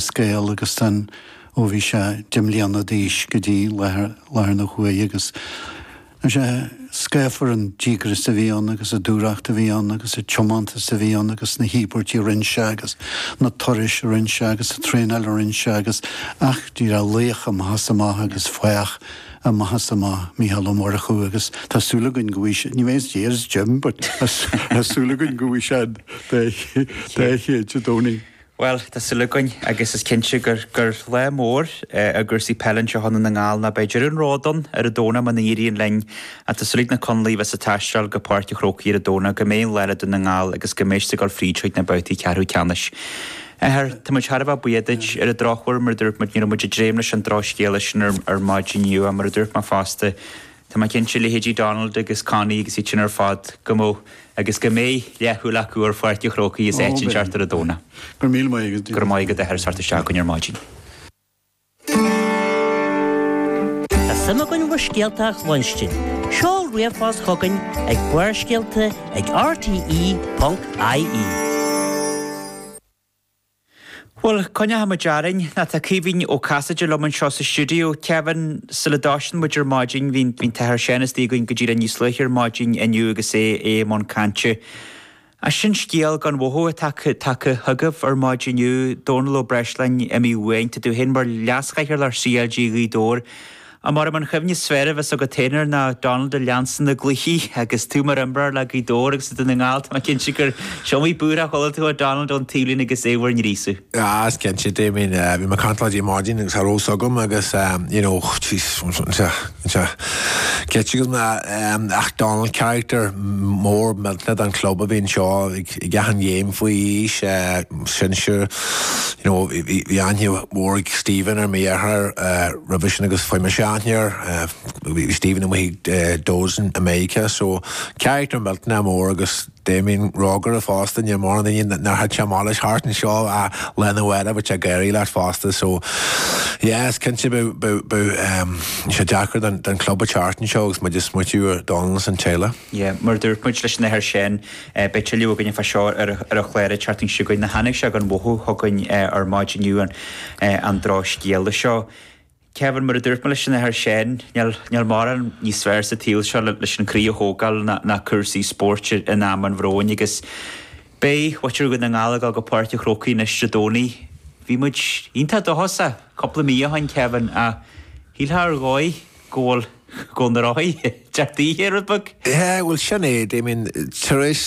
scéal agus sin ó bhí sé deich mbliana d'aois go dtí láthair na huaire agus tá sé scáfar an díograis a bhí ann agus an dúthracht a bhí ann agus an tiomantas a bhí ann agus na híobairtí a rinne sé agus na turais a rinne sé agus an traenáil a rinne sé agus ach a Dhia laoch amach is amach agus fathach amach is amach Micheál Ó Murchú agus tá súil againn go bhfuil ní bheidh as dear as Jim but tá súil againn go bhfaighidh sé an dá chéad Dé Domhnaigh. Bhuel, tá súil againn agus is cinnte gur lá mór i gcúrsaí peile anseo i nDún na nGall ná beidh deireadh an róid ann ar an Domhnach muna n-éiríonn linn ach tá súil ag na Conallaigh a bheas ag taisteáil go Páirc an Chrócaigh ar an Domhnach go mbeidh an lá le Dún na nGall agus go mbeidh siad ag dul fríd chuig na babhtaí ceathrú ceannais. Athair, tá muid thar a bheith buíoch duit. Ar an drochuair, mar a dúirt muid, ní raibh muid ag dréim leis an drochscéala sin ar maidin inniu ach mar a dúirt mé fosta, Tá mé cinnte, leithéidí Donald agus Connie agus iad sin ar fad, go mbeadh, agus go mbeidh, leathshúil acu ar Pháirc an Chrócaigh as áit inteacht ar an Domhnach. Go raibh míle maith agat. Go raibh maith agat a Athair as teacht isteach chugainn ar maidin. Tá suim againn bhur scéalta a chluinstin. Seol ríomhphost chugainn ag barrscéalta ag rte.ie. Bhuel, coinneoidh muid orainn. Ná tá Caoimhín Ó Casaide liom anseo sa stiúideo. Kevin, sula dtosnann muid ar maidin, bhí an tAthair Seán istigh againn giota níos luaithe ar maidin inniu agus é i mbun cainte. Ach sin scéal gan mhothú atá tagtha chugaibh ar maidin inniu, Dónall Ó Breisleáin, imithe uainn. Tá tú féin mar Leas-Chathaoirleach CLG Ghaoth Dobhair Abair liom an chuimhne is fearr a bheas agat féin air ná Donald ag leanstan na gcluichí agus tú mar imreoir le Gaoth Dobhair agus le Dún na nGall, tá mé cinnte gur is iomaí búirtheach a chuala tú ó Donald ón taobhlíne agus é bhur ngríosadh. Ah, is cinnte, Damien, bhí mé ag caint leat ar maidin agus cha raibh a fhios agam agus, you know, jeez, anseo, ceilte go na, ach Donald character mór millteanach don club a bhí anseo ag achan game faoi aois, sinsear, you know, bhí aithne mhór ag Stephen air, mo dheartháir, roimhe sin agus fuair mise aithne air, bhí Stephen amuigh ag imirt dósan i Meiriceá so character millteanach mór agus Damien rógaire fosta, níl mórán daoine nár thit sé amach leis thart anseo ach lá arna mhárach bhí sé ag gáirí leat fosta so yeah is cinnte beidh sé deacair don chlub a theacht anseo agus muid ag smaoitiú ar Donald is an teaghlach. Yeah, mar a dúirt muid leis an Athair Seán, beidh tuilleadh againn fá seo ar an chlár an tseachtain seo chugainn. Nó tháinig sé gan mhothú chugainn ar maidin inniu, an drochscéala seo. Kevin, mar a dúirt mé leis an Athair Seán, níl mórán níos fearr sa tsaol seo leis an chroí a thógáil ná cúrsaí spóirt in am an bhróin agus beidh muintir Dhún na nGall ag dul go Páirc an Chrócaigh anois Dé Domhnaigh. Bhí muid iontach doshásaithe cúpla mí ó shin, Kevin, ach shílfeá ar dhóigh, go bhfuil, go bhfuil na rothaí ag teacht ar fheabhas. Yeah, bhuel, sin é, I mean, tar éis